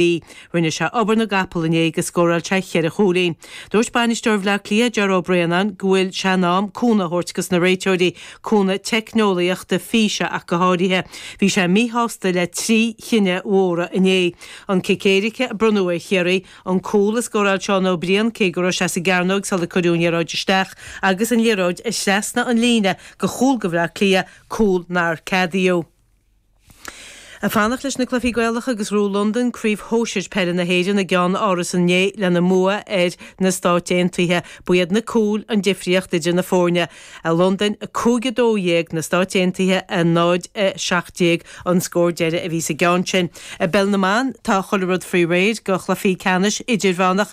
Bhí. Rinne sé obair na gcapall inné agus scóráil sé cheithre chúilín. Dúirt bainisteoir Bhleá Cliath, Ger Brennan, go bhfuil sé in am cúnamh a thabhairt dos na réiteoirí, cúnamh teicneolaíochta, físe ach go háirithe. Bhí sé míshásta le trí chinneadh mhóra inné, an cic éirice a bronnadh ar Chiarraí, an cúl a scóráil Seán Ó Briain cé go raibh sé sa gcearnóig sular cuireadh an liathróid isteach, agus an liathróid a thrasnaigh an líne go chúl go Bhleá Cliath, cúl nár ceadaíodh. Ag fanacht leis na cluichí Gaelacha agus ghnóthaigh Londain craobh shóisir peile na hÉireann i gCeannáras inné lena mbua ar na Stáit Aontaithe, ba iad na cúil an difríocht idir na foirne. Londain, 5-12 na Stáit Aontaithe, 0-17 an scór deiridh a bhí sa gceann sin. I bpeil na mban, tá chuile rud faoi réir go chluichí ceannais idirmheánach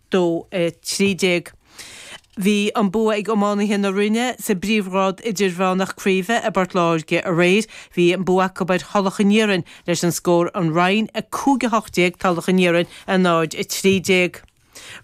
2 13. Bhí an bua ag iománaithe na Rinne sa bpríomhghrád idirmheánach craoibhe i bPort Láirge aréir. Bhí an bua acu ar Thulach an Iarainn leis an scór An Rinn 5 18 Tulach an Iarainn 0 13.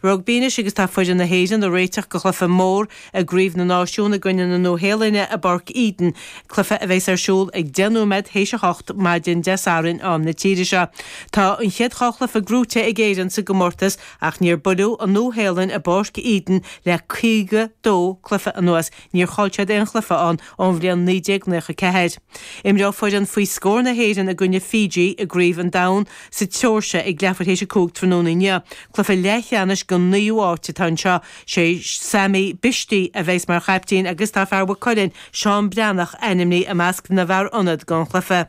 Rugbaí anois agus tá foireann na hÉireann ag réiteach go chluiche mór I gCraobh na Náisiún i gcoinne na Nua-Shéalainne i bPáirc Eden cluiche a bheas ar siúl ag 10 nóiméad théis a hocht maidin Dé Sathairn am na tíre seo. Tá an chéad dhá chluiche gnóthaithe ag Éirinn sa gcomórtas ach níor buaileadh an Nua-Shéalainn i bPáirc Eden le 52 cluiche anuas, níor chaill siad aon chluiche ann ón bhliain 1994. Imreoidh foireann faoi scór na hÉireann i gcoinne Fiji i gCraobh an Domhain sa tSeoirsia ag leathuair théis a cúig tráthnóna inniu. Cluiche leathcheannais don naoú háit atá anseo. Sé Sami Bishti a bheidhs mar chaiptín agus tá fear Mhaigh Cuilinn, Seán Breathnach ainmnithe i measc na bhfear ionad don chluiche.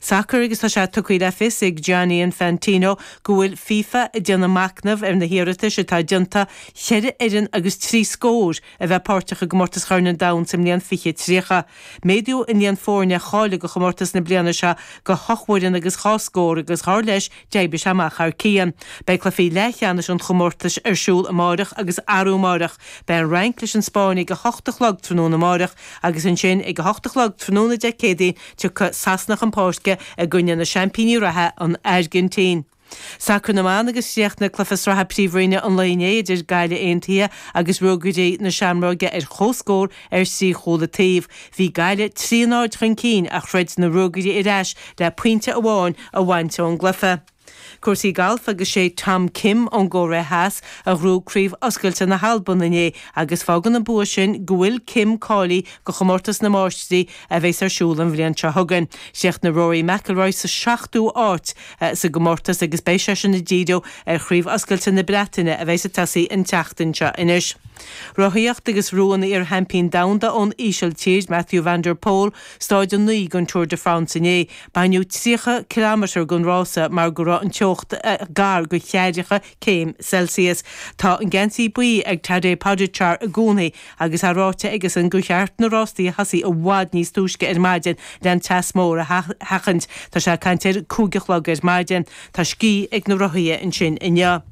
Sacar agus tá sé tugtha le fios ag Gianni Infantino go bhfuil FIFA ag déanamh macnamh ar na hiarratais atá déanta cheithre fhoireann agus trí scór a bheith páirteach i gcomórtas Chorn an Domhain sa mbliain fiche tríocha. Méadaíodh an líon foirne a cháiligh do chomórtas na bliana seo go hocht bhfoireann agus dhá scór agus dar leis d'oibrigh sé amach thar cionn. Beidh cluichí leathcheannais an chomórtais ar siúl amárach agus arú amárach. Beidh an Fhrainc leis an Spáinn ag a hocht a chlog tráthnóna amárach agus ansin, ag a hocht a chlog tráthnóna Dé Céadaoin, tiocfaidh Sasana chun páirce i gcoinne na seaimpíní reatha, an Airgintín. Sacar na mBan agus Chríochnaigh cluiche sraithe Príomhroinne an lae inné idir Gaillimh Aontaithe agus Ruagairí na Seamróige ar comhscór, Ar thrí chúl an taobh, bhí Gaillimh trí náid chun cinn ach throid na Ruagairí ar ais le pointe amháin a bhaint ón gcluiche. Cúrsaí Gailf agus sé Tom Kim ón gCóiré Theas a ghnóthaigh Craobh Oscailte na hAlban inné agus fágann an bua sin go bhfuil Kim cáilithe go Chomórtas na Máistrí a bheas ar siúl an bhliain seo chugainn. Chríochnaigh Rory McIlroy sa seachtú áit sa gcomórtas agus beidh seisean ag díriú ar Chraobh Oscailte na Breataine a bheas ag tosaí an tseachtain seo. Anois. Rothaíocht agus ghnóthaigh iarsheaimpín Domhanda ón Ísiltír, Mathieu van der Poel, Stáid 9 den Tour de France inné. Baineadh 30 cileámetar den rása mar go raibh an teocht gar do cheathracha céim Celsius. Tá an geansaí buí ag Tadej Pogačar i gcónaí agus é ráite aigesan gur cheart na rástaí a thosaí i bhfad níos túisce ar maidin le an teas mór a sheachaint. Tá sé ag caint ar a cúig a chlog ar maidin. Tá scíth ag na rothaithe ansin inniu.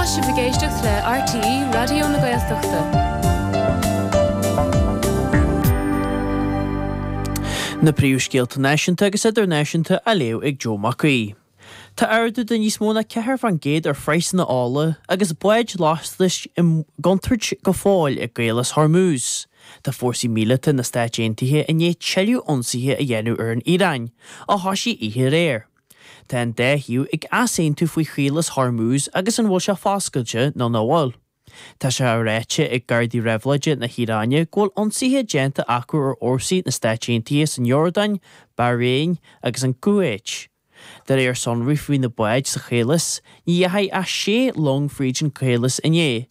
Tá sibh ag éisteacht le RTÉ Raidió na Gaeltachta. Na príomhscéalta náisiúnta agus idirnáisiúnta á léamh ag Joe Mac Aoidh. Tá ardú de níos mó ná ceathair faoin gcéad ar phraghsanna ola agus báid lastais i gcontúirt go fóill i gCaolas Hormuz. Tá fórsaí míleata na Stáit Aontaithe i ndiaidh tuilleadh ionsaithe a dhéanamh ar an Iaráin, a thosaigh oíche aréir. Tá an dá thaobh ag easaontú faoi Chaolas Hormuz agus an bhfuil sé foscailte nó ná bhfuil. Tá sé á ráite ag Gardaí Réabhlóide na hIaráine go bhfuil ionsaithe déanta acu ar fhórsaí na Stáit Aontaithe san Iordáin, Bahrain agus an Cúveit. De réir sonraí faoi na báid sa chaolas, ní dheachaigh ach sé long fríd an chaolas inné,